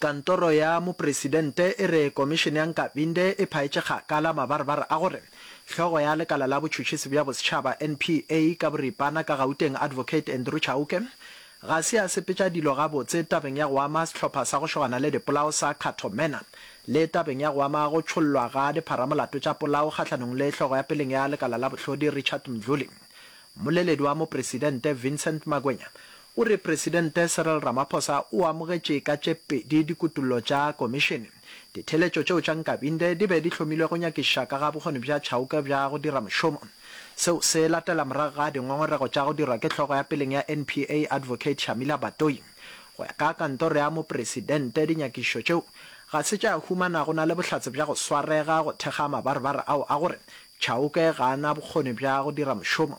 Kantoro ya Mopresidente e re Komišene ya Nkabinde e phaetše kgakala mabarebare a gore hlogo ya lekala la botšhotšhisi bja bosetšhaba, NPA, ka boripana ka Gauteng Advocate Andrew Chauke ga se a sepetša dilo gabotse tabeng ya go ama sehlopha sa go šogana le dipolao sa Khatho Manor le tabeng ya go ama go tšhollwa ga dipharamolato tša polao kgahlanong le hlogo ya peleng ya lekala la bohlodi Richard Mdluli. Mmoleledi wa Mopresidente Vincent Magwenya O re Presidente Cyril Ramaphosa o amogetše ka tše pedi dikutollo tša Komišene. Ditheeletšo tšeo tša Nkabinde di be di hlomilwe go nyakišiša ka ga bokgoni bja Chauke bja go dira mošomo. Seo se latela morago ga dingongorego tša go dirwa ke hlogo ya peleng ya NPA Advocate Shamila Batohi. Go ya ka kantoro ya Mopresidente dinyakišišo tšeo ga se tša humana go na le bohlatse bja go swarega go thekga mabarebare ao a gore Chauke ga a na bokgoni bja go dira mošomo.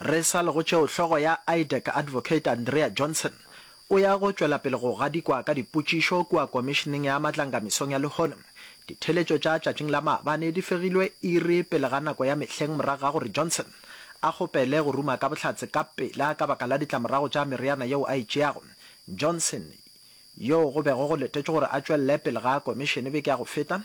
Re sa le go tšeo, hlogo ya IDEC, Advocate Andrea Johnson, o ya go tšwela pele go gadikwa ka dipotšišo kua Komišeneng ya Matlanga mesong ya lehono. Ditheeletšo tša tšatšing la maabane di fegilwe iri pele ga nako ya mehleng morago ga gore Johnson a kgopele go ruma ka bohlatse ka pela ka baka la ditlamorago tša meriana yeo a e tšeago. Johnson, yoo go bego go letetšwe gore a tšwelele pele ga komišene beke ya go feta,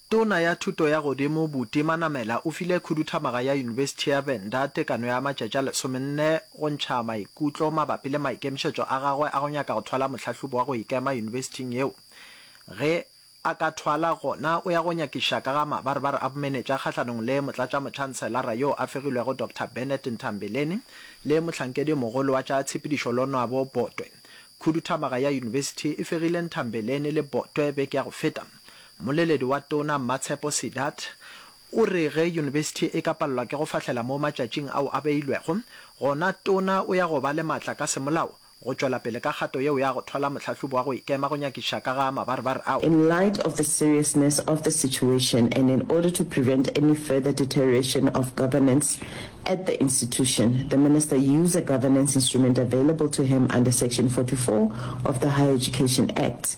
Tona ya Thuto ya Godimo Buti Manamela o file khuduthamaga ya Yunibesithi ya Venda tekano ya matšatši a lesomenne go ntšha maikutlo mabapi le maikemišetšo a gagwe a go nyaka go thwala mohlahlobi wa go ikema yunibesithing yeo ge a ka thwala gona o ya go nyakiša ka ga mabaribari a bomenetša kgahlanong le motlatšamotšhanselara yo a fegilwego Doctor Bennett Ntambeleni le mohlankedi-mogolo wa tša tshepedišo Lonwabo Botwe. Khuduthamaga ya yunibesithi e fegile Ntambeleni le Botwe beke ya go feta. Mmoleledi wa Tona Mmatshepo Sedat o re ge yunibesithi e ka palelwa ke go fahlela mo matšatšing ao a beilwego, gona Tona o ya go ba le matla ka semolao go tšwela pele ka kgato yeo ya go thola mohlahlobi wa go ikema go nyakišiša ka ga mabarbar ao. In light of the seriousness of the situation and in order to prevent any further deterioration of governance at the institution, the Minister use a governance instrument available to him under Section 44 of the Higher Education Act.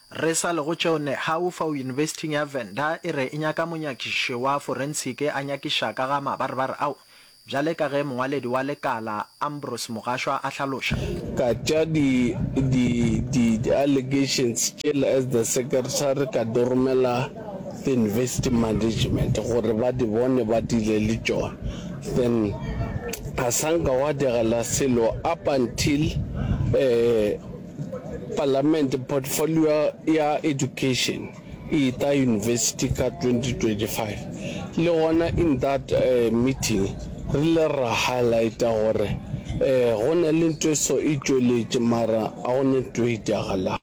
Re sa le go tšeo, Nehawu fao Yunibesithing ya Venda e re e nyaka monyakišiši wa forensiki a nyakiša ka ga mabaribari ao, bjale ka ge mongwaledi wa lekala Ambrose Mogashwa a hlaloša. ka tša di di di di allegations tšela as the secretary ka di romela the university management gore ba di bone ba dile le tšona then ga sa nka gwa diragala selo up until um Palamente portfolio ya Education e ta University ka 2025. Le gona in that uh, meeting re ile ra highlighta gore eh, go na le ntho e so e tšweletše mara a go ne ntho e itagalago.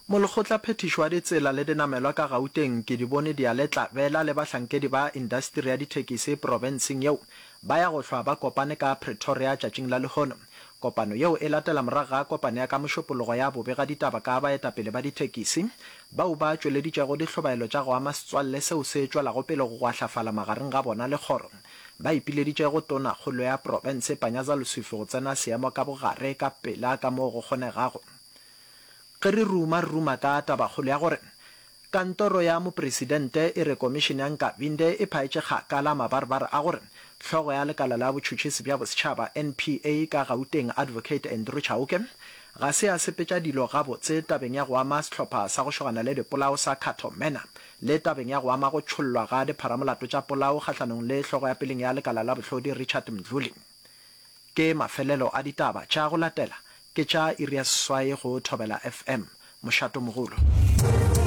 Molekgotla Phethiši wa Ditsela le Dinamelwa ka Gauteng Kedibone Diale-Tlabela le bahlankedi ba indasteri ya dithekisi profenseng yeo ba ya go hlwa ba kopane ka Pretoria tšatšing la lehono. Kopano yeo e latela morago ga kopano ya ka Mošopologo ya bobe ga ditaba ka baetapele ba dithekisi bao ba tšweleditšego dihlobaelo tša go ama setswalle seo se tšwelago pele go gwahlafala magareng ga bona le kgoro ba ipileditše go Tonakgolo ya Profense Panyaza Lesufi go tsena seemo ka bogare ka pela ka moo go kgonegago. Ge re ruma, re ruma ka tabakgolo ya gore Kantoro ya Mopresidente e re Komišene ya Nkabinde e phaetše kgakala mabarbar a gore hlogo ya lekala la botšhotšhisi bja bosetšhaba, NPA, ka Gauteng, Advocate Andrew Chauke, ga se a sepetša dilo gabotse tabeng ya go ama sehlopha sa go šogana le dipolao sa Cato Manor le tabeng ya go ama go tšhollwa ga dipharamolato tša polao kgahlanong le hlogo ya peleng ya lekala la bohlodi Richard Mdluli. Ke mafelelo a ditaba tša go latela ke tša iri ya seswai go Thobela FM. Mošato mogolo.